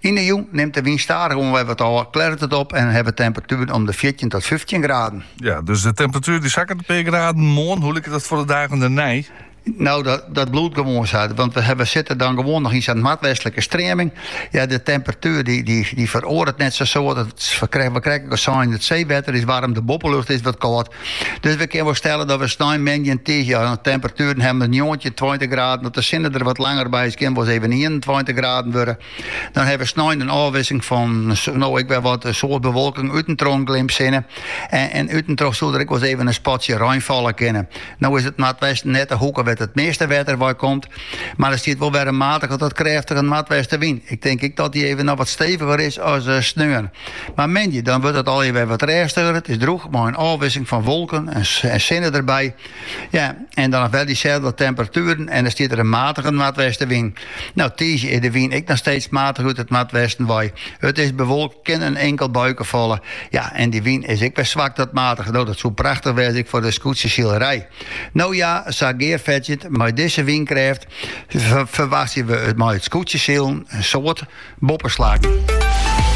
Yn 'e jûn nimt de wyn stadich oan wer wat ôf, klearret it op en hawwe we temperatueren om de fjirtjin tot fyftjin graden. Ja, dus de temperatuer die sakket in pear graden. Moarn, hoe liket dat foar de dagen dernei? Nou, dat, dat bliuwt gewoan sa. Want we, we sitte dan gewoan noch yn sa'n noardwestlike streaming. Ja, de temperatuer dy, dy, dy feroaret net sa. Sa we, krije, we krije it seewetter is waarm, de boppelucht is wat kâld. Dus we kinne wol stelle dat we snein, moandei en tiisdei hjir temperatueren hawwe mei njoggentjin, tweintich graden. As de sinne der wat langer by is, kin wol ris even ienentweintich graden wurde. Dan hawwe we snein in ôfwisseling fan no ek wolris in soad bewolking út en troch in glimp sinne. En, en út en troch soe der ek wol ris even in spatsje rein falle kinne. No is it noardwesten net de hoeke wêr't it measte wetter wei komt, mar der stiet wol wer in matige tot krêftige noardwestenwyn. Ik tink ek dat dy even noch wat steviger is as eh, sneon. Mar moandei dan wurdt it allegear wer wat rêstiger. It is drûch mei in ôfwisseling fan wolken en sinne derby. Ja, en dan noch wer dyselde temperatueren en dan stiet der in matige noardwestenwyn. No, tiisdei is de wyn ek noch steeds matich út it noardwesten wei. It is bewolkt, kin in inkel buike falle. Ja, en dy wyn is ek wer swak tot matich. No, dat soe prachtich wêze ek foar de skûtsjesilerij. No ja, sa gearfetsjend mei dizze wynkrêft ferwachtsje we mei it skûtsjesilen in soad boppeslaggen.